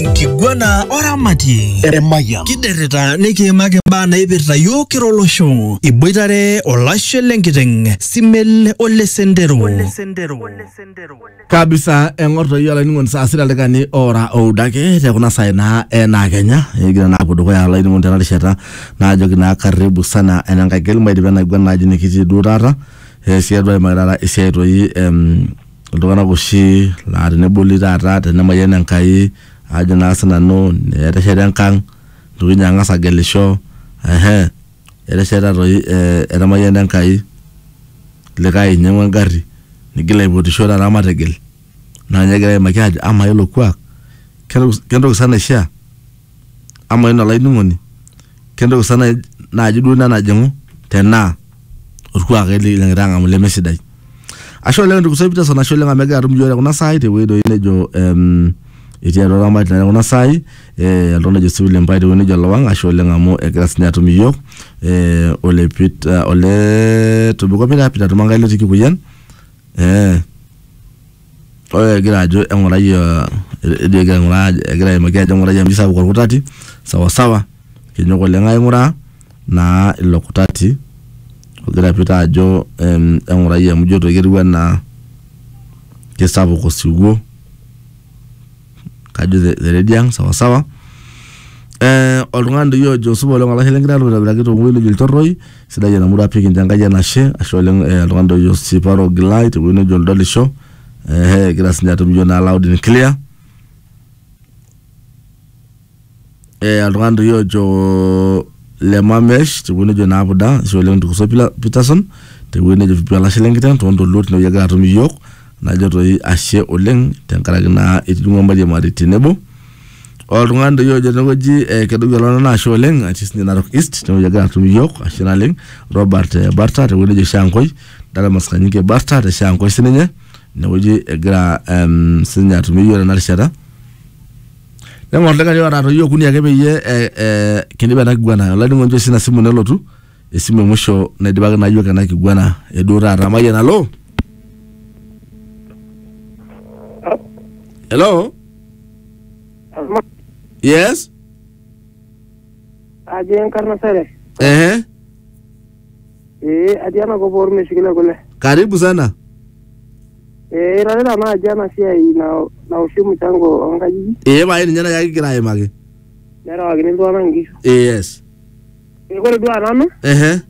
Kiguana oramatie Emayian. kiderrita nikiimaki imbaa naipirta yiok kira olosho iboitare olashe lenkiteng simel ole sendero kabisa eng'or toi olainining'oni saa sita ildaikani oora oudo ake te kuna saai naa enaa kenya egira naa apuo dukuya olainining'oni tena rishata naajoki naa karibu sana enenkai keli maidip enaiguana naaji nikitii duo taata eh, siadu aimaki taata esiai toi em, Iltung'anak oshi laa teneboli taata tenemayian Enkai ajo naa sinanu etesheta enkang nitoki ninye ang'as agelisho ehe etesheta toi eh etamayiana Enkai likae inyiang'ua engarri nigil aipotisho taata matigil naa ninye egirae aimaki aajo amaa ilo kuak kentoki sa naishia. Amaa iyie olainining'oni kentoki sa naaji duo ina najing'u tenaa olkuak ele likigira ang'amu leme sidai. Ashe oleng ndugu zangu Peterson ashe oleng amu egira atum iyiook te kuna saai tewueji doi nejo ehm etii atua oramatie te kuna saai eh oltung'ani ojo sii William Pai tewueji nejo Olowang ashe oleng amu egira siininye atum iyiook eh ole Peter olee Tobiko Peter, Peter Tomangai lotii Kikuyian eeh Ore egira ajo eng'urai uh, ejo egira aing'uraa ajo- egira aimaki ajo eng'urai amu kisapuk orkutati sawasawa kinyok oleng aing'uraa naa ilo kutati ogira Peter ajo em, eng'urai amu ijo toi ketiu enaa kisapuk osiwuo. kajo the, the lady ang sawa sawa eh, oltung'ani doi ojo supa oleng olashe lengira aitobiraki tong'uei nejo ilchorroi sidai ena murua pii kincho enkai enashe ashe oleng eh, oltung'ani doi ojo siparo ogilai tewuei nejo oldolisho eh, egira sinye atum iyiok naa loud and clear eh, oltung'ani toi ojo le mamesh tewueji nejo naapuda ashe oleng ntukuso Pila- peterson tewueji nejo vipi olashe lenkiteng toontoluo tinewueji egira atum iyiook najo toi ashe oleng tenkaraki naa itijing'ua mariam aret tenebo oltung'ani doi ojo tenewueji eh, kedoki ololo naa ashe oleng atii sinye narok east tenewueji egira atum iyiook ashe naleng robert eh, barta tewueji nejo shankoi dalamas kanyike barta te shankoi sininye inewueji egira em, sinye atumie iyiook tena rishata neng'or likae oota toi okuni ake peyie eh, eh, kindip ena kiguana olainining'oni nchoo sina simu nelotu esimu emusho naidipaki naa yiok ena kiguana eduo taata mayian alo hello yes ajo enkarna sere ehe Eh, atii enakop ormeshukin e kule. Karibu sana. Eh, irorita naaji ena siai na- naoshi mchango oonkajijik Ee pae ninye nai kigira aimaki. nerewakini iltung'anak inkishu. Ee yes. Eh, Ore duo nanu Ehe.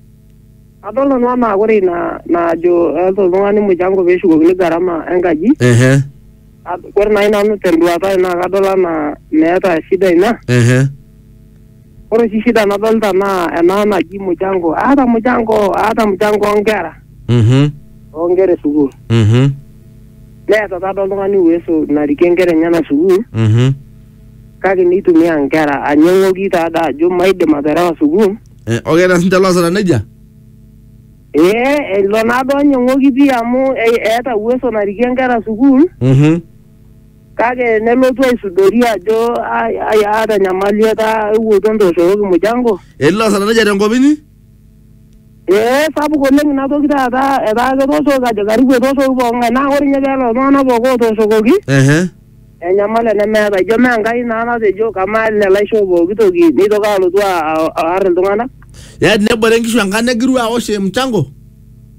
adol nanu anaa ore ina najo eeta oltung'ani mchango pee eshukokini gharama enkaji. Ehe. ad- Ore naaji nanu tenduata ai naa kadol anaa meeta shida ina. Ehe. Ore oshi shida nadolta naa ena naji mchango. Aata mchango, aata mchango oonkera, Mhm. oonkera e sukuul. Mhm. Neeta taata oltung'ani uwezo narikie nkera enyena sukuul Mhm. kake neitumia nkera anyang'oki taada ajo maidim aterewa sukuul. Eh, okay, eeta sinche loosita nejia? Ee ilo naado anyang'oki pii amu e- eeta uwezo narikie nkera sukuul. Mhm. kake nelotu aisudori ajo ai- ai- aata enyamali etaa ewuoto ntooshokoki mujango elilo asatanija tenkop inyi ee sapuk oleng ina toki taata etaa ketooshoki ajo karibu etooshoki poong'ae naa ore ninye peelo iltung'anak pooki ootooshokoki ehe enyamali enemeeta ijo mee enkai naa natejo kamaa ele laisho pooki toki neitoki alotu a- a- aar iltung'anak yaani nebore nkishu enkang negiru awosh mchango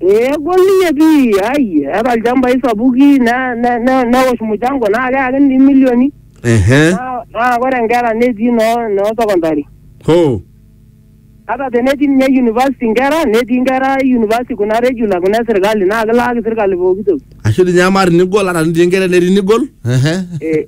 Ee egol ninye pii ai eeta ilchambai sapuki ne- ne- ne- newosh muchango naa keyaki ninye milioni ehe naa naa ore nkera netii noo noo secondary ho ata tenetii ninye university nkera netii nkera university kuna regular kuna esirkali naa kilaaki sirkali pooki toki ashu dii ninye amaa tinigol ata tinigol enetii nigol ehe Eh,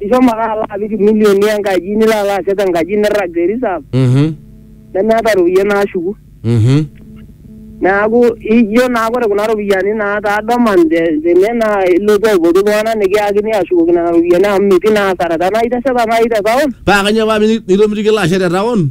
ishomo ake alo apik milioni enkaji nilo alo ashet enkaji nirrag te reserve Mhm. nemeeta iropiyiani naashuku Mhm. neeku ijo naa ore kuna ropiyiani naa taa dormant te- tene naa ilotu aipotu iltung'anak nikiyakini ashukoki nena ropiyiani amu metii naa asara tenaa itesheta naaji te town Paa kanyoo paa miti- mitomitiki ilo ashe te town?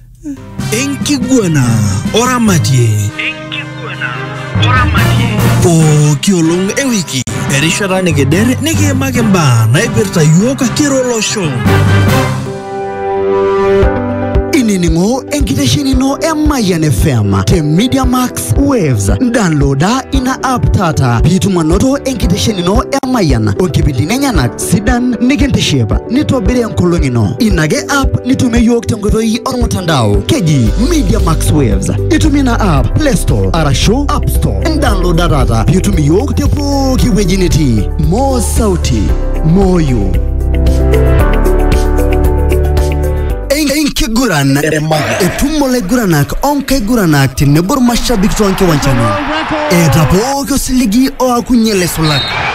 enkiguana oramatie pooki olong e wiki erishata nikider nikiimaki imbaa naipirta yiook kira olosho inining'o enkitesheni ino e Mayian FM te Media Max Waves. Downloada ina app taata piitum anoto enkitesheni ino e Mayian o nkipindini enyenak sidan nikintiship nitobiri enkolong ino ina ake app nitumie yiok tenkoitoi ormutandao keji media max waves itumie ina app play store arashu app store indownloada taata piitum iyiok te pooki wueji nitii moo sauti moyo enkiguran etum olaiguranak onkaiguranak tenebo irmashabik toonkiwanjani eeta pooki osiligi oakunye laisulak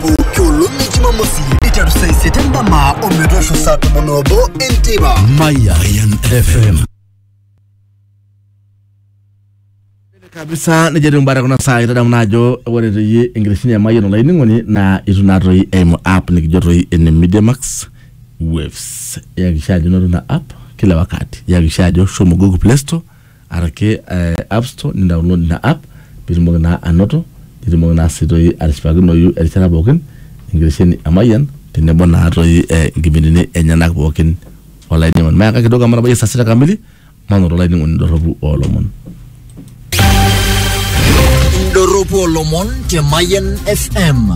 pooki olong e jumamosi iteru saa isiet endama ometoosho saa tomon obo enteipa Mayan FM. kabisa nejo etiu mbaa tekuna saa itadamu naa ajo ore toi enkitesheni e Mayian olainining'oni naa itu naa toi eimu app nikijo toi ene Media Max Waves. Iyakikisha ajo inoto ina app kila wakati. Iyakikisha ajo shomo Google Play Store araki eh, app store nidownload ina app pitumoki naa anoto nitumoki naa sii toi atishipakinoyu erishata pookin enkitesheni e Mayian tenebo naa toi eh, inkipindini enyenak pookin olainining'oni mayaka kidogo amu etabayie saa sita kamili manoto olainining'oni dorropu oolomon Indorropu olomon te Mayan FM.